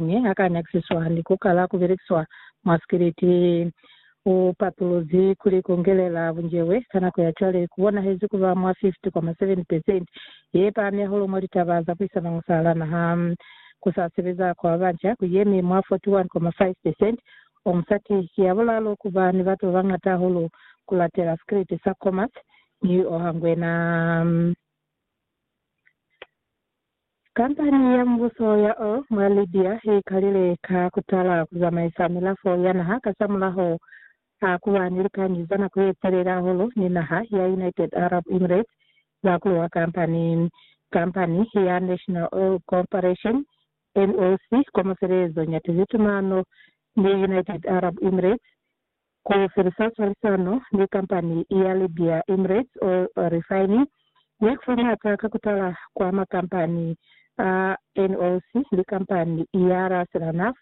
mi ha ka nyakisiswa likoka la ku belekiswa mwa sikiliti. U patuluzi kuli ku ngelela bunjewe ka nako ya cwale ku bonahezi ku ba mwa 50,7 pesenti ye pahami hahulu mwa litaba za puisanong za hana naha. Ku sa sebeza kwa ba banca ku yemi mwa 41,5 pesenti. O musati ki ya bulaalu ku ba ni batu ba bañata hahulu ku latela sikiliti sa Comas, mi o hangwena. Kampani ya mubuso ya Oil mwa Libya i kalile ka ku tala ku zamaisa milafo ya naha kasamulaho a ku ba ni likañi za nako ye telele hahulu ni naha ya United Arab Emirates za ku luha kampani. Kampani ya National Oil Corporation, NOC, kwa mafelelezong ya tizitumano ni United Arab Emirates, Ku felisa cwalisano ni kampani ya Libya Emirates Oil Refining ya kufa maata ka kutala kwa makampani a NOC ni kampani ya Raselanaf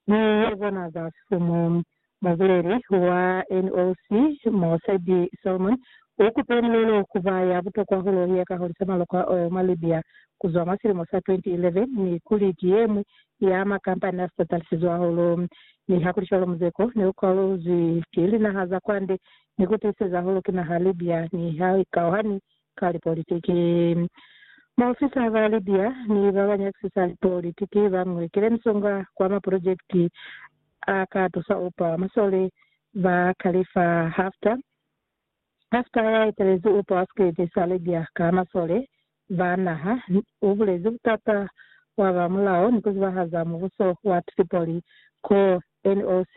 ni ya bona za sifumu. Mubuleli wa NOC Mosabi Salman u kupe mulelo ku ba ya butokwa hulu ya ka hulisa maloko a oil mwa Libya ku zwa mwa silimo sa 2011 ni kuli ki ye ñwi ya makampani a sipatalisizwe hahulu. Mi ha kuli cwalo, muzeko ne u kwaluzwi ki linaha za kwande ni ku tiiseza hahulu ki naha Libya ni ha i kauhani ka lipolitiki. Maofisa ba Libya ni ba ba nyakisisa lipolitiki ba ngwekile misonga kwa maprojekiti a ka tusa upa masole ba Khalifa Haftar Pasitara ya etelezi u pwaskezi Serbia ka masole ba naha, u bulezi butata bwa ba mulao ni ku zibahaza mubuso wa Tripoli ko NOC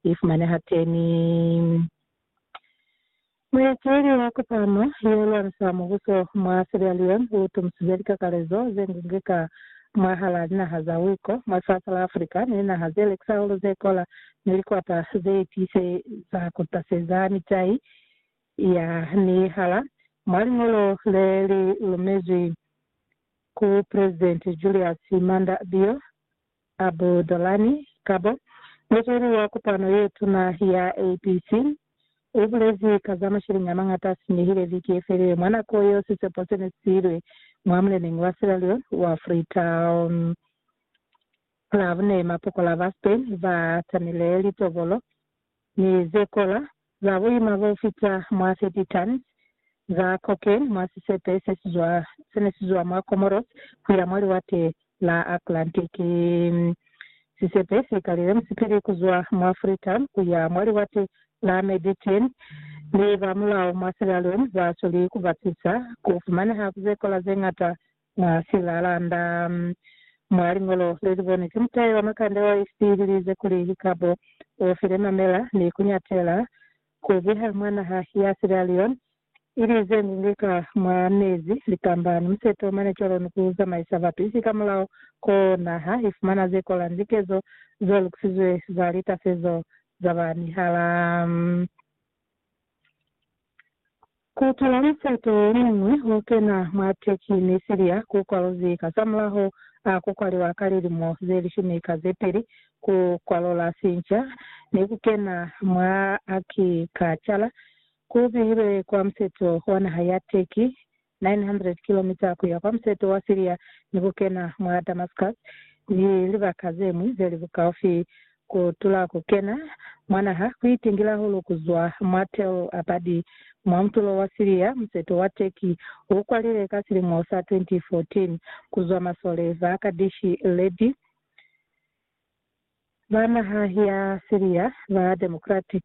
i fumaneha teni. Mueteli wa kopano yo lwanisa mubuso mwa Sierra Leone u tumusize likakalezo ze ngunge ka mwahal'a linaha za Wiko mwa lifasi la Africa ni linaha ze lekisa hulu ze kola ni likwata ze tiise za ku taseza mitai ya nihala. Mwa liñolo le li lumezwi ku Presidenti Julius Maada Bio Abu Dolani kabo muzweli wa kopano ye tuna ya APC, u bulezi ka za masheleñi a mañata a sinyehile viki ye felile mwa nako yeo sisepo se ne si ilwe mwa muleneñi wa Sierra Leone wa Freetown. Club ne mapokola ba Spain ba tamile litobolo ni ze kola, za buima bo fita mwa 30 tons, za cocaine mwa sisepe se si zwa, se ne si zwa mwa Comoros ku ya mwa Liwate la Atlantic. Sisepe si kalile musipili ku zwa mwa Freetown ku ya mwa Liwate la Meditene, mi ba mulao mwa Sierra Leone ba sweli ku batisa ku fumaneha ku ze kola ze ñata Mwa silalanda mwa liñolo le li bonwe ki mutai wa makande wa East li lize kuli, Likabo u file mamela ni ku nyatela ku biha mwa naha ya Sierra Leone i li ze ngungwi ka mwa mezi, litamba, ni museto mane cwalo ni ku zamaisa bapisi ka mulao ko naha i fumana ze kola ni likezo zo lukisizwe za litasezo za ba mihala. Ku tala musato o muñwi o kena mwa Turkey ni Syria ku kwaluzi kazamulaho a ku kwaliwa ka lilimo ze lishumi ka ze peli, ku kwalula sinca ni ku kena mwa akikachala ku bihilwe kwa museto wa naha ya Turkey 900 kilomita ku ya kwa museto wa Siria ni ku kena mwa Damascus ni libaka ze ñwi ze li bukaufi ku tula ku kena mwa naha ku itingila hulu ku zwa mwa Tel Abadi mwa mutulo wa Siria. Museto wa Turkey u kwalile ka silimo sa 2014 ku zwa masole ba Kaddishi Ledi ba naha ya Siria ba Democratic.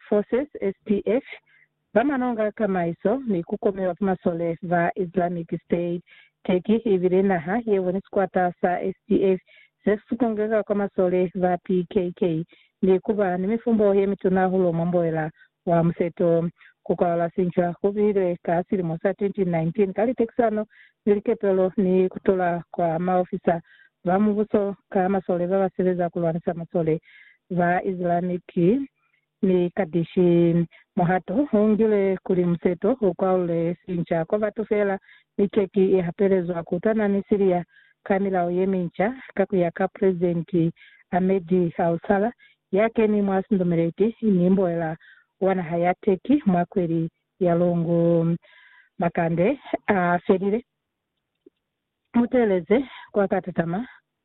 Forces, SDF, ba manonga kamaiso ni ku komeba fa masole ba Islamic State. Turkey i bile naha ye boni sikwata sa SDF se si kongeka kwa masole ba PKK ni ku ba ni mifumbo ye mituna hahulu mwa mboela wa Museto. Ku kwalala sincwa ku bile ka silimo sa 2019 ka litekisano ni likepelo ni ku tola kwa maofisa ba mubuso ka masole ba ba sebeza ku lwanisa masole Za Isilamiki, mi Kadishi muhato u ngile kuli museto u kwaule sinca kwa batu fela, mi Turkey i hapelezwa ku twana ni Syria ka milao ye minca, ka ku ya ka Presidenti Ahmed al-Sala, ya keni mwa sindumeleti ni mboela wa naha ya Turkey mwa kweli ya Lungu. Makande a felile, muteleze kwa ka tatama.